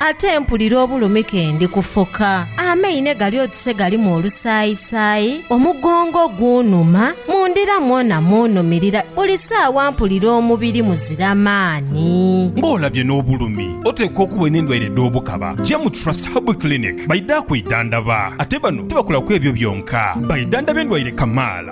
Ate mpulira obulumi ke ndi kufoka, amaine gali oti se galimu olusaayisaayi, omugongo gunhuma, mu ndira mwona munhumirira, buli saawa mpulira omubiri muzira maani. Nga olabye n'obulumi, oteekwa okuba n'endwaire dh'obukaba. Ja mu Trust Herbal Clinic baidha kwidhandaba. Ate bano tibakolaku ebyo byonka, baidhandhaba endwaire kamaala.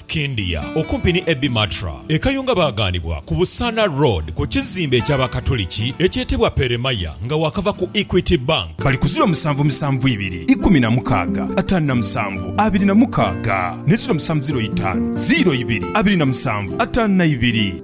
Scindia, okumpi ni Abbey Matra e Kayunga baaghanibwa ku Busaana Road ku kizimbe eky'Abakatoliki ekyetebwa Peremaya nga waakava ku Equity Bank. Bali ku ziro musanvu musanvu ibiri ikumi na mukaaga ataanu na musanvu abiri na mukaaga ne ziro musanvu ziro itaanu ziro ibiri abiri na musanvu ataanu na ibiri.